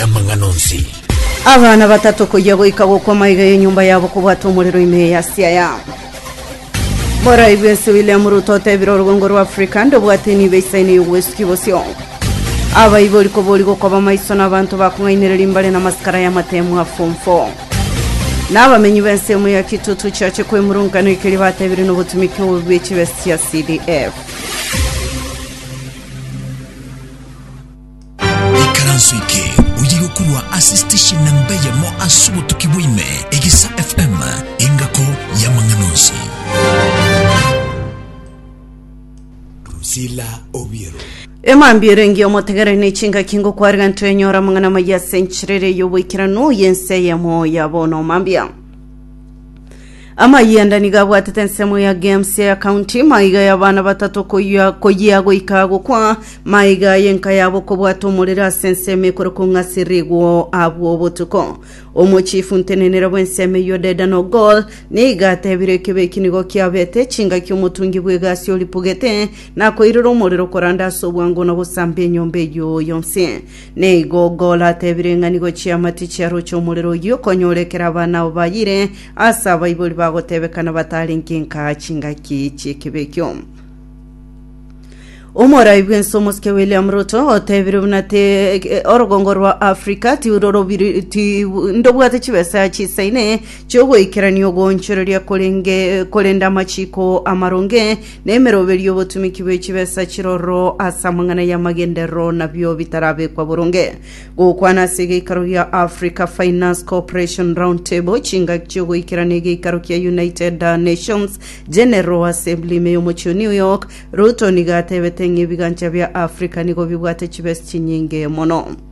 y'amang'ana onsi. Abana batato koyia goika gokwa maiga y'enyomba yabo kobwata omorero ime ya Siaya. Borai bwensi William Ruto otebire orugongo rwa Africa ndobwate enibo isaine y'obwesuki bosio. Abaibori kobori gokoba maiso na abanto bakong'ainereria mbare na masikara y'amatemu a form 4. Na abamenyi b'ense emo ya Kitutu chiache kwemurungana ekeria batebire nobotumiki obobe bwe chibesa chia CDF. Ikaranso eke oyiga okorwa ase station namba eyemo ase obotuki bwaime, Egisa FM, engako y'amang'ana onsi. Drusilla Obiero. Emambiero engiya omotegere ne chingaki ngokwarega ntwenyora amang'ana amaya ase enchirere y'oboikeranu y'ense eyemo ya bono mambia Amayanda nigo abwatete ensemo ya games ya county maiga y'abana batato koyia koyia goika gokwa maiga y'enka yabo kobwata omorere ase ensemo ekorokwa ng'a sirigwo abwo obotuko omochifu ntenenera bw'ensemo eyio dedan ogol niga atebire ekebe eki nigo kiabete chingaki omotungi bw'egasi oripugete nakoirera omorero koranda ase obwango na gosamba enyomba eyio yonsi Nigo Golo atebire ng'ani gochia amatichi a roche omorero oyio okonyora ekero abana abo bayire ase abaibori bagotebekana batarenge nka chingaki chi'ekibe ekio. Omorai bw'ense omosike William Ruto otebire buna te orogongo rwa Africa tirorobiri ti ndobwate chibesa chisaine chiogoikerania ogoonchoreria korenge korende amachiko amaronge nemeroberi y'obotumiki bwe chibesa chiroro ase amang'ana y'amagenderero nabio bitarabekwa boronge. Gokwana ase egeikaro gia Africa Finance Cooperation Roundtable, chingaki chiogoikerana egeikaro kia United Nations General Assembly ime y'omochie o New York, Ruto nigo atebete ng'a ebigancha bia Africa nigo bibwate chibesa chinyinge mono.